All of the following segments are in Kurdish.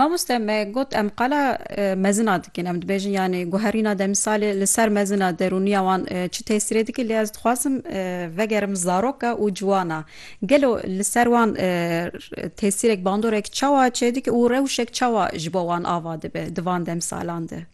Mamoste me got em qala e, mezina dikin em dibêjin yani guherîna demsalê li ser mezina derûniya wan e, çi tesîrê dike lê ez dixwazim e, vegerim zaroka û ciwana gelo li ser wan e, tesîrek bandorek çawa çêdike û rewşek çawa ji bo wan ava dibe di van demsalan de.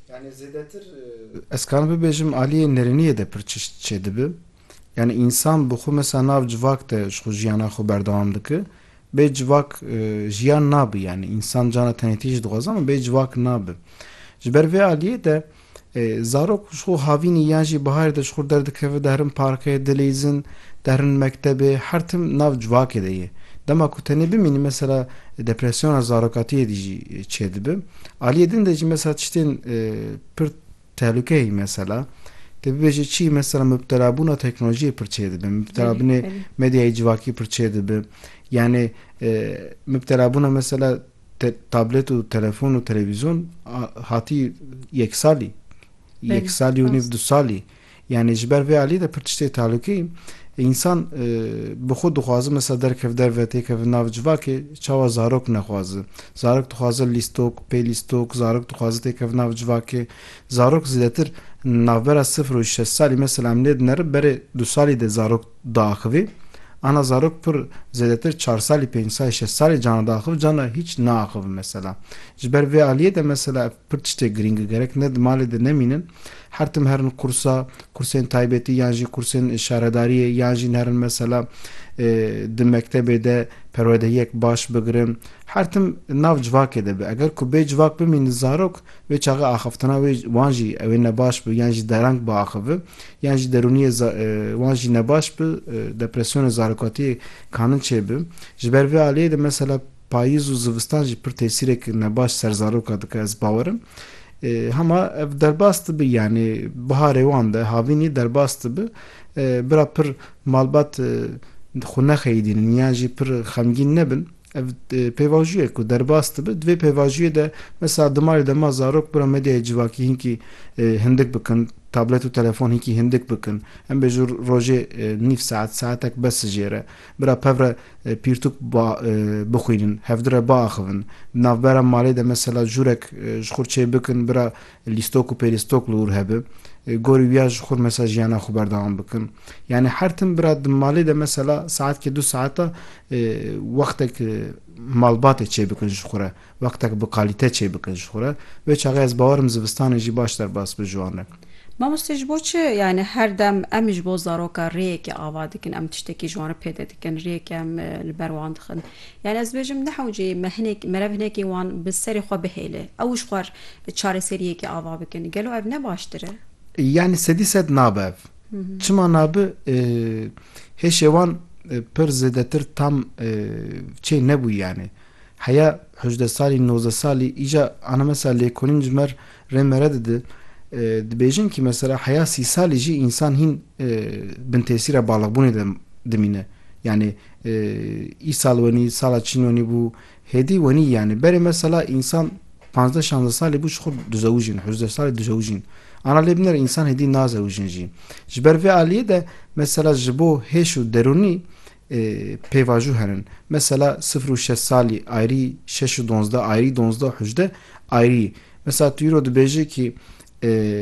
Yani zêdetir e, ez karim bibêjim aliyê nêrîniyê de pir çişt çêdibe. Yanî însan bi xwe misa nav civak de ji xwe jiyana xwe berdewam dike. Bê civak jiyan nabe. Yanî însan cana tenêtî jî dixwaze ama bê civak nabe. Ji ber vê aliyê de zarok ji xwe havînî yan jî biharê de ji xwe derdikeve dihrin parkê, dileyzin, dihrin mektebê her tim nav civakê de ye. Dema ku tenê bimînî mesela depresyona zarokatiyê dî jî çêdibe. Aliyê din de jî mesela tiştên pir Tehlukeyî mesela te bibêje çi? Mesela mubtelabûna teknolojiyê pir çêdibe, mubtelabûnê medyayê civakî pir çêdibe. Yanî mubtelabûna mesela tablet û telefon û televîzyon hatî yek salî, yek salî û nîv du salî. Yanî ji ber vê alî de pir tiştê talûkî însan bi xwe dixwaze mesela derkev derve têkeve nav civakê çawa zarok nexwaze. Zarok dixwaze lîstok, pêlîstok, zarok dixwaze têkeve nav civakê. Zarok zêdetir navbera sifir û şeş salî mesela em lê dinerin berê du salî de zarok diaxivê. Ana zarok pir zêdetir çar salî, pênc salî, şeş salî cana diaxiv cana hîç naaxivin mesela. Ji ber vê aliyê de mesela Pir tiştê girîng e gerek ne di malê de nemînin, her tim herin qursa, kursên taybetî yan jî kursên şaredariyê yan jî herin mesela di mektebê de perwedehiyek baş bigirin, her tim nav civakê de be. Eger ku bêcivak bimînin zarok, wê çaxê axiftina wê wan jî ew ê nebaş bi yan jî dereng biaxivi yan jî derûniyê wan jî nebaş bi, depresyonê zarokatiyê kanin çêbi. Ji ber vê aliyê de mesela. Payîz û zivistan jî pir tesîrek nebaş ser zaroka dike ez bawer im. Hema ev derbas dibi yanî biharê wan de havînî derbas dibi. Bira pir malbat xwe nexeyîdînin yan jî pir xemgîn nebin. Ev pêvajûyek ku derbas dibi. Di vê pêvajûyê de mesela dimarê de ma zarok bira medyayê civakî hinkî hindik bikin, tablet û telefon hinkî hindik bikin. Em bêjin rojê nîv saet, saetek bes ji jêr e. Bira pev re pîrtûk ba bixwînin, hevdû re biaxivin. Di navbera malê de mesela jûrek ji xwe çê bikin, bira lîstok û pêlîstok li wir hebe. Gorî wiya ji xwe mesela jiyana xwe berdewam bikin. Yanî her tim bira di malê de mesela saetkê du saeta wextek malbatê çê bikin ji xwe re. Wextek bi kalîte çê bike ji xwe re. Wê çaxê ez bawer im zivistanê jî baş derbas bi ji wan re. Mamoste ji bo çi yani her dem em ji bo zaroka rêyekê ava dikin, em tiştekî ji wan re pêde dikin, rêyekê em li ber wan dixin. Yani ez dibêjim nehewce me hinek merev hinekê wan bi serê xwe bihêle. Ew ji xwe re çareseriyekê ava bikin. Gelo ev ne baştir e? Yani sedî sed nabe ev. Çima nabe? Hêşê wan pir zêdetir tam çê nebûye yani. Heya hejdeh salî, nozdeh salî, îca ana mesela lêkolîn ji mer rê mere dide. Dibêjin kî mesela heya sî salî jî însan hîn bin tesîra baliqbûnê de dimîne. Yanî îsal wenî, sala çîn wenî bû, hêdî wenî yanî. Berê mesela însan panzdeh şanzdeh salî bû ji xwe dizewijin, hejdeh salî dizewijin. Ana lê binêre însan hêdî nazewijin jî. Ji ber vê aliyê de mesela ji bo hêş û derûnî pêvajo herin. Mesela sifir û şeş salî ayrî, şeş û donzdeh ayrî, donzdeh û hejdeh ayrî. Mesela tu îro dibêjî kî.